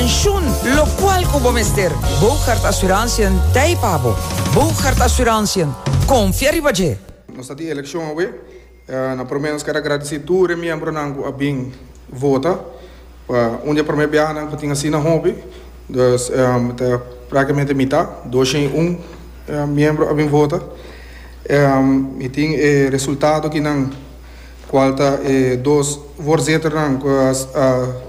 Pensioen, lokual ku bo mester. Bougaard Asuransiën ta ei pa bo. Bougaard Asuransiën, konfia riba dje! Nos ta di elekshon awe. Na promé nos ker agradisí tur e miembronan ku a bin vota. Pa un di e promé biahanan ku tin asina hopi, dus ta praktikamente mitá, doshen i un miembro a bin vota. Mi tin e resultado kinan kual ta e dos voorzitternan ku a.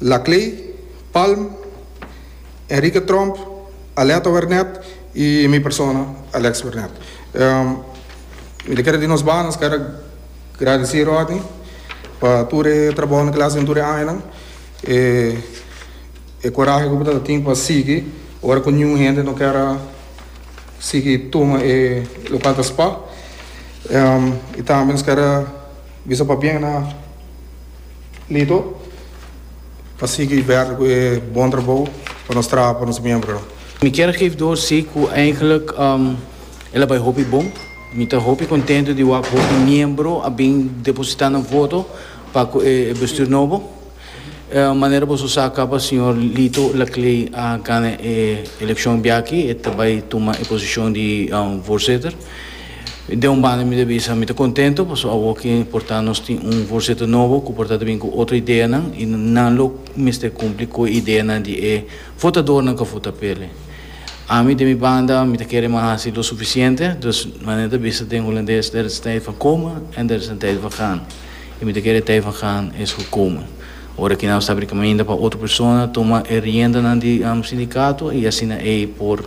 La Clay, Palm, Enrique Tromp, Aletta Wernet y mi persona Alex Wernet. Mi ta kere di nos banan skada gradeci Rodney pa tur e trabohonan cu el a haci den tur e añanan, e corahe cu bo ta tin pa sigui ora cu niun hende no ker a sigui tuma e local ta spa y tambe nos ker a bisa pabien na. Lito pa sigui bèrder ku e bon trabou ku nos traha pa nos miembronan. Mi kier gif door si ku eindelijk el a bai hopi bon. Mi ta hopi kontentu di wak hopi miembro a bin depositá nan voto pa ku e bestuur nobo. Manera boso sa kaba señor Lito Laclay a gana e elekshon biaaki, e ta bai tuma e posishon di voorzitter. Den un banda mi ta bisa mi ta contento paso awo ki porta nos tin un voorzitter nobo cu por ta ta bin cu otro ideanan y nan lo mester cumpli cu e ideanan di e votadornan cu a vota pe el. Ami den mi banda mi ta kere mi a haci lo suficiente, dus manera ta bisa den Holandes there is a tijd van komen en there is a tijd van gaan y mi ta kere e tijd van gaan es gekomen. Ora ki nan a sabri caminda pa otro persona toma e riendanan di sindicato y asina ey por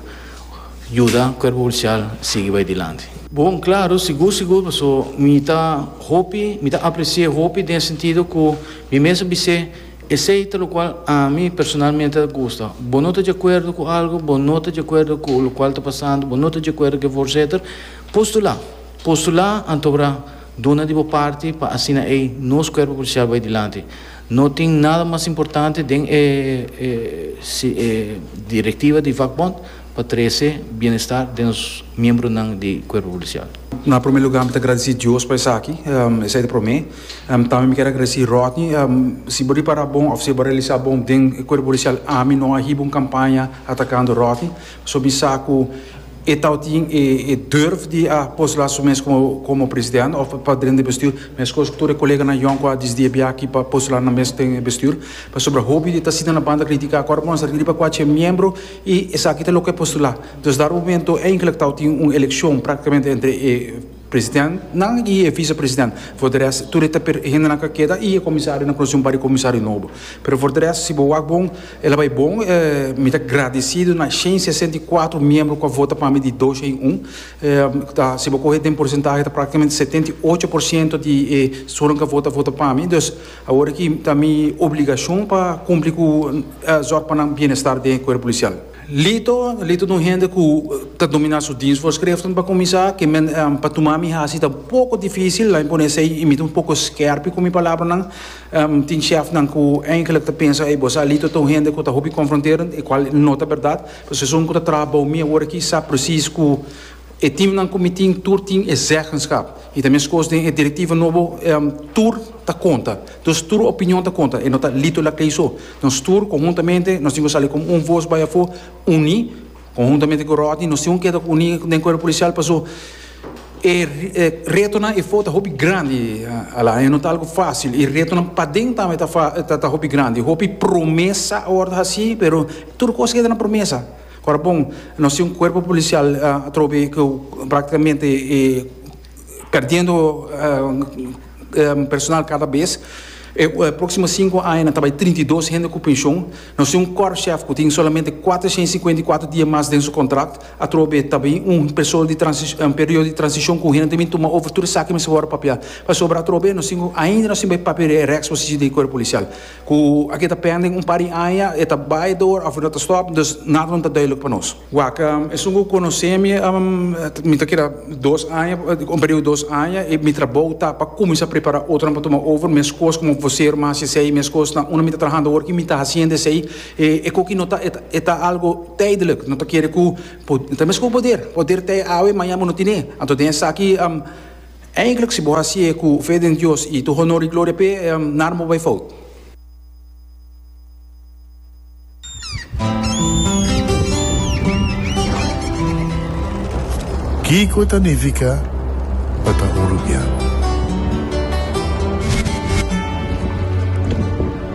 Yuda Cuerpo Policial sigui bay dilanti. Bon, claro, sigur sigur, paso mi ta hopi, mi ta aprecié hopi den e sentido cu mi mes a bis'é esey ta locual ami personalmente a gusta. Bo no ta djacuerdo cu algo, bo no ta djacuerdo cu locual ta pasando, bo no ta djacuerdo cu efor etcetera, postula, postula antobra duna di bo parti pa asina ey nos Cuerpo Policial bay dilanti. No tin nada mas importante den e directiva di vakbond. pa trese bienestar den nos miembronan di Cuerpo Policial. Na prome lugar mi ta gradeci Dios pa esaki, esai ta prome. Tambe mi kier a gradeci Rodney. Si bo ripara bon of si bo a realisa bon den e Cuerpo Policial ami no a hiba un campaña atacando Rodney. Pasobra mi sa cu e tao tin e durf di a postula su mes como president of pa dren di e bestuur. Mescos cu tur e coleganan yòn cu a disdi a bia aki pa postula nan mes den e bestuur. Pasobra hopi ta sinta na banda critica cu ora bo a sa riba cu a ch'e miembro. I esaki ta loke postulá. Dus na rumentu e inclectao tin un eleccion practicamente entre e presidentnan i e vicepresident. For de rest tur e ta per e hendenan ca keda i e comisario na conoci un par di comisario nobo. Pero for de rest si bo wak bon e la bai bon. Mi ta gradicido na shen sesenta i kuatro miembro cu a vota pa mi di dos shen un. Ta si bo coge den porcentahe ta practicamente setenta i ocho por ciento di e sunan cu a vota a vota pa mi. Awor aki ta mi obligacion pa cumpli cu zorg pa nan bienestar den e cuerpo policial. Lito, Lito ta un hende cu ta domina su dienstvoorschriften pa cuminsa, ke men pa tuma mi haci ta un poco dificil, laat mi pone esey y mi ta un poco scherpe cu mi palabranan. Tin chefnan cu eindelijk ta pensa, ey, bo sa Lito ta un hende cu ta hopi confronterend, e cual no ta berdad. Pues esun cu ta traha bao mi awor aki sa precies cu. E teamnan ku mi tin tur tin e zeggenskap i ta meskos den e direktiva nobo tur ta konta. Dus tur opinion ta konta, e no ta lito la kei so. Nos tur konhuntamente nos tin ku sali komo un vos bai afó uní. Konhuntamente ku Rodney nos tin ku keda uní den Kuerpo Polisial pasó e retonan e for ta hopi grandi Alain, e no ta algu fásil. I retonan paden tambe ta hopi grandi. Hopi promesa awor ta hasí pero tur kos keda na promesa. Ora bon, nos tin un cuerpo policial atrobe cu practicamente e perdiendo personal cada bes. E proximo cinco aña nan ta bay trinta i dos hende cu pension. Nos tin un Korpschef cu tin solamente cuatrocientos y cincuenta y cuatro dia mas den su contract. Atrobe ta bay un persoal di transi-, un periodo di transicion cu hende ta bay tuma over tur esaki mesora papia. Pasobra atrobe nos tin, ainda nos tin bay papia di e reksposicion di e cuerpo policial. Ku aki ta pende un par di aña, e ta bai dor of no ta stop, dus nada no ta duidelik pa nos. Wak, Esun ku konosemi mi ta keda dos aña, un periudo dos aña, i mi trabou ta pa kuminsá prepará otronan pa tuma over, meskos komo vosero mi a hasi esei, meskos na unda mi ta trahando awor ki mi ta hasiendo esei, e koki no ta, e ta algu taidelik, no ta kere ku, ta meskos poder, poder ta e awe, maña bo no tine, anto den esaki, Eindelijk si bo hacié cu fe den Dios y tu honor y gloria p'E, nada bo bay fout. Kico ta nifica pa ta un rubian?